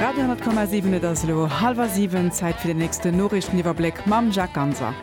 Radio 10,7 Et ass elo hallwer siwen, Zäit fir den nächsten Noriichteniwwerbléck mam Jacques Ganser.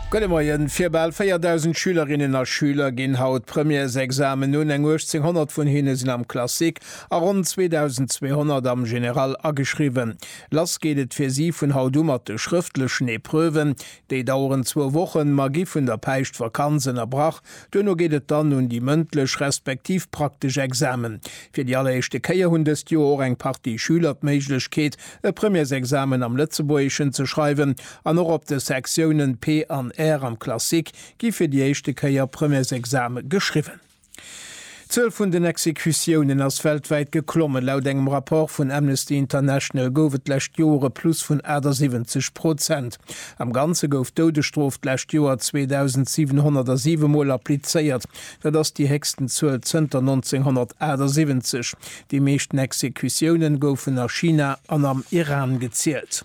Gudde Moien, Fir bal 4.000 Schülerinnen a Schüler ginn haut d'Premièresexamen un, eng 1.800 vun hinne sinn am Classique a ronn 2.200 am General ageschriwwen. Lass geet et fir si vun haut u mat de schrëftlechen Epreuven. Déi daueren zwou Wochen, ma gi vun der Päischtvakanz ënnerbrach, Duerno geet et dann un déi mëndlech respektiv praktesch Examen. Fir déi alleréischte Kéier hunn dëst Joer och eng Partie Schüler d'Méiglechkeet, e Premièresexamen am Lëtzebuergeschen ze schreiwen. An och op de Sektiounen P an R am Classique gi fir déi éischte Kéier Premièresexame geschriwwen. D'Zuel vun den Exekutiounen ass weltwäit geklommen. Laut engem Rapport vun Amnesty International gouf et d'lescht Joer e Plus vun 78 Prozent. Am Ganze gouf d'Doudesstrof d'lescht Joer 2.707 Mol applizéiert. Dat ass déi héchsten Zuel zënter 1978. Déi meeschten Exekutiounen goufen a China an am Iran gezielt.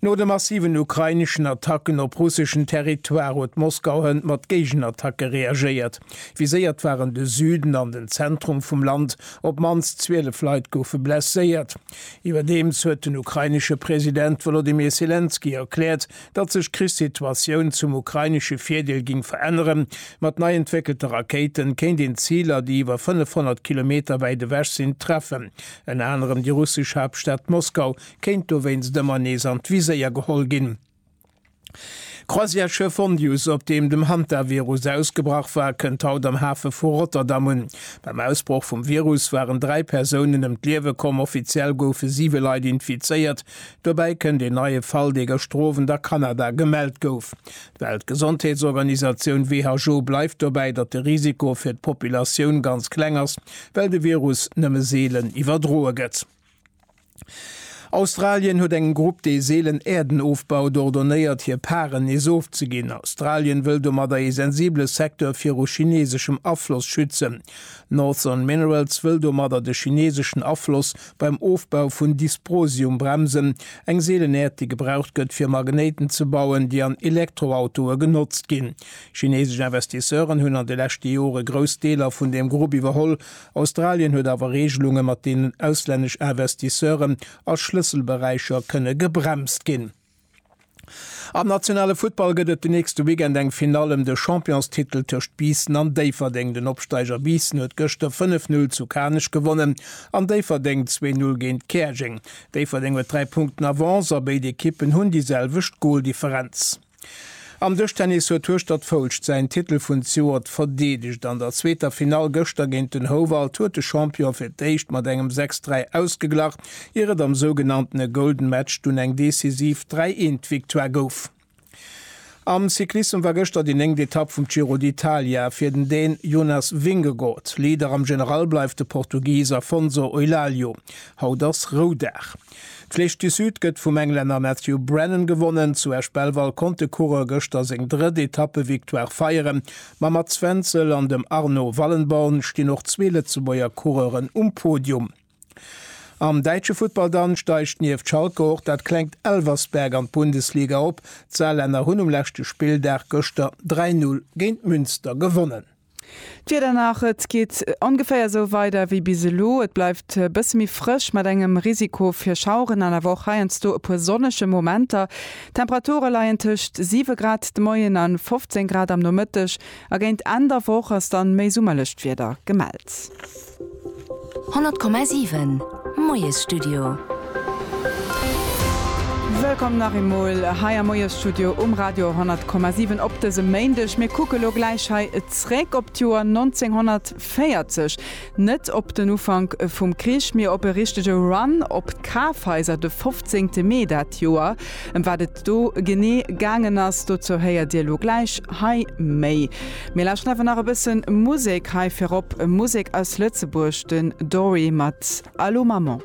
No de massiven ukraineschen Attacken op russeschen Territoire huet Moskau hënt mat Géigenattacke reagéiert. Viséiert waren de Süden an den Zentrum vum Land, op d'mannst 12 Leit goufe blesséiert. Iwwerdeems huet den ukrainesche President Wolodymyr Selenskyj erkläert, datt sech d'Krichssituatioun zum ukrainesche Virdeel géing veränneren. Mat nei entwéckelte Rakéite kéint een Ziler, déi iwwer 500 Kilometer wäit ewech sinn, treffen, ënner anerem déi russesch Haaptstad Moskau, kéint dowéinst ëmmer nees an d'Viséier geholl ginn. D'Croisièreschiff Hondius, op deem dem Hantavirus ausgebrach war, kënnt haut am Hafe vu Rotterdam un. Beim Ausbroch vum Virus waren dräi Persounen ëm d'Liewe komm, offiziell goufe siwe Leit infizéiert. Dobäi kënnt een neie Fall, dee gëschtowend a Kanada gemellt gouf. D'Weltgesondheetsorganisatioun WHO bleift dobäi, datt de Risiko fir d'Populatioun ganz kleng ass, well de Virus nëmme seelen iwwerdroe gëtt. Australien huet engem Grupp, dee seelen Äerden ofbaut, ordonéiert, hir Paren nees ofzeginn. Australien wëll domadder ee sensibele Secteur viru chineeseschem Afloss schützen. Northern Minerals wëll domadder de chineeseschen Afloss beim Ofbau vun Dysprosium bremsen, eng seelen Äerd, déi gebraucht gëtt, fir Magnéiten ze bauen, déi an Elektroautoe genotzt ginn. Chineesesch Investisseuren hunn an de leschte Jore grouss Deeler vun deem Grupp iwwerholl Australien huet awer Reegelunge mat deenen auslännesch Investisseuren a Schlësselberäicher kënne gebremst ginn. Am nationale Futtball gëtt et den nächste Weekend eng Finall ëm de Championstitel tëscht Biissen an Déifferdeng. Den Opsteiger Biissen huet gëschter 5, 0 zu Kanech gewonnen an Déifferdeng 2, 0 géint Käerjeng. Déifferdeng huet 3 Punkten Avance a béid Ekippen hunn déi selwecht Goldifferenz. Am Dëschtennis huet Hueschtert Foulscht säin Titel vun Zjuert verdeedegt. An der zweeter Finall gëschter géint den Houwald huet de Champion fir d'éischt mat engem 6, 3 ausgeglach, ier et am sougenanntene Golden Match dunn eng decisiv 3, 1 Victoire gouf. Am Cyclissem war gëschter déi néngt Etapp vum Giro d'Italia fir den Dän Jonas Vingegaard. Leader am General bleift de Portugis Afonso Eulálio. Haut ass Roudag. D'Flèche du Sud gëtt vum Englänner Matthew Brennan gewonnen. Zu Esch-Belval konnt de Coureur gëschter seng drëtt Etappevictoire feieren. Mam Mats Wenzel an dem Arno Wallenborn stinn och zwee Lëtzebuerger Coureuren um Podium. Am däitsche Futtball dann steigt nieft Schalke och dat klengt Elversberg an d'Bundesliga op. D'Saarlänner hunn um leschte Spilldag gëschter 3, 0 géint Münster gewonnen. D'Wieder nach, Et geet ongeféier esou weider wéi bis elo. Et bleift e bësse méi frësch mat engem Risiko fir Schaueren an awer och heiansdo e puer sonnege Momenter. D'Temperature leien tëscht 7 Grad de Moien a 15 Grad am Nomëtteg a géint Enn der Woch ass dann méi summerlecht Wieder gemellt. 100,7 Moiesstudio. Wëllkomm nach eemol hei am Moiesstudio um Radio 100,7 op dësem Méindeg. Mir kucke elo gläich hei zréck op d'Joer 1940. Net op den Ufank vum Krich, mee op e richtege Run op d'Kafhaiser de 15 Mee dat Joer. Ëm wat et do genee gaangen ass, dozou héiert Dir elo gläich hei méi. Mir lauschteren awer nach e bësse Musek. Hei virop Musek aus Lëtzebuerg, den Dory mat Allô Maman.